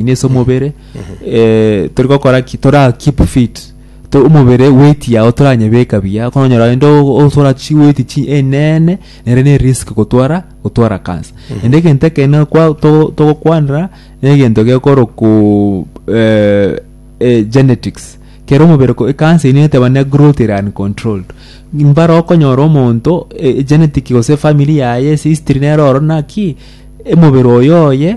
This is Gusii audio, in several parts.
ine ase omobere eh, tori gokora ki tora keep fit To- omobere weight yao toranyebeka buya kono onyora ende osora chi weight chi enene nere ne risk gotwara gotwara cancer ende egento ekene kwa to- togokwanera negento gekoro ku eh, eh, genetics kero omobere ko ekansa ino eteba ne growth ere uncontrolled mbare okonyora omonto eh, genetic gose efamiri yaye ase history nero oro naki emobere oyo oye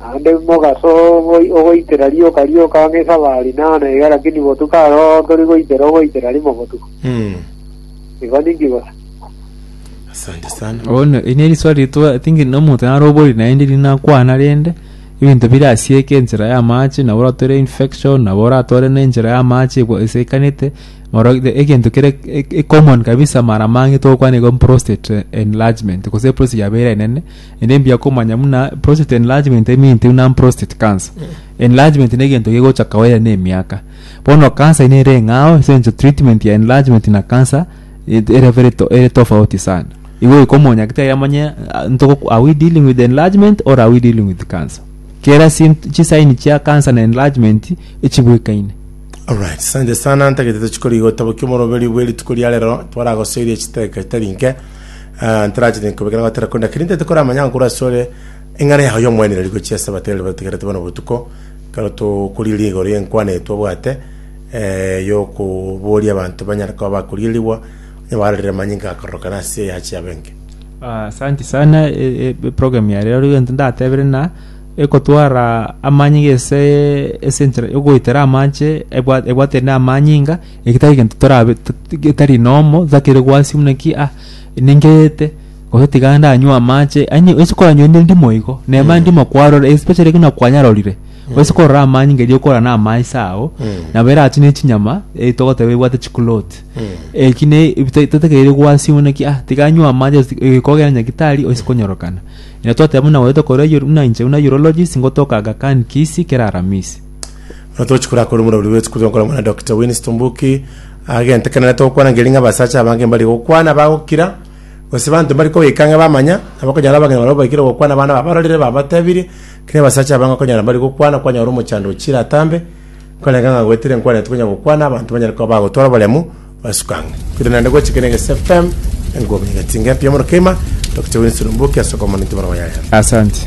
Naende mogaso ogoi- ogoitera rioka rioka ang'e esaba rinana iga, lakini botuko aroro tori goitera ogoitera rimo botuko. Igo ninki bosa? Asante sana. Bono eri neriswali ritwa I think na omonto naro obori naende eri nakwana rende ebinto birasieke enchera y'amache nabo oratore infection nabo oratore nenchera y'amache ekwa- esiekanete Oro the- egento kere e- e- common kabisa mara mange tokwana igo prostate eh, enlargement gose prostate yabeire enene ende mbuya komanya buna prostate enlargement eminti buna prostate cancer enlargement na egento gegocha kawaida na emiaka bono cancer nere eng'ao ase eng'encho treatment ya enlargement na cancer et- ere very to- ere tofauti sana igo goika omonyagte iga amanye ah, ntoko are we dealing with enlargement or are we dealing with cancer kera sympt- chisaini chia cancer na enlargement echibuekaine. Alright, sante sana ntagete tochikori gotabokia omoroberi bwe rituko ria rero twaragosoirie chiteka itari nke Ah, ntarachete nkobekera gotera konde lakini ntete kora amanya nkura sore eng'ana yago y'omwenereri gochia ase abatere bategerete bono botuko kero tokoriri igoro y'enkwana eye twabwate eh, yokoboria abanto banyare koba bakorierigwa onye barorire amanyinga akororokana ase eyache yabe enke Ah, Asante sana e- e- eprogramu ya rero egento ndatebire na egotwara amanyinga ase ase enchera yogoetera amache ebwa ebwate na amanyinga eki tari gento torabe to- to- getari normal totakeire gwasia buna ki ah ninkeete gose tiga ndanywe amache yaani ase koranywa rende ndimo igo nema Mm. ndimo kwarora especially buna kwanyarorire ase korora amanyinga erio okora na amaaiso ago Mm. nabo eratune echinyama eh togoteba ebwate chikuloti Mm. eki ne ebi ta- totakeire gwasia buna ki ah tiga nywe amache ase ti- eh kogenda nyagitari ase konyorokana Ere twateba buna gwaito korwa Euro- buna inche buna Eurologist ngotoka Aga Khan Kisi kera Aramisi. Buna togochia korakora omorweri bwe esukuru y'okorwa omwana Dokita Winnie Tumbuki agente kera nare togokwana ngeria ng'a abasacha abange mbari gokwana bagokira gose banto mbari kogoika ng'a bamanya nabo okonyora abang'ina barabwo baikire gokwana abana babarorire babatebirie keri abasacha abange okonyora mbari gokwana kwanyora omochando ochire atambe Korende ng'a gwetire nkwanete konya gokwana, abanto banyare koba bagotwara oboremu basuka ang'e. Korende naende gochika na egese FM, enkuba konya egatinga empe y'omoro keima, tokiche goinsa oromboki ase okomonwa ninche bono bayaye. Asante.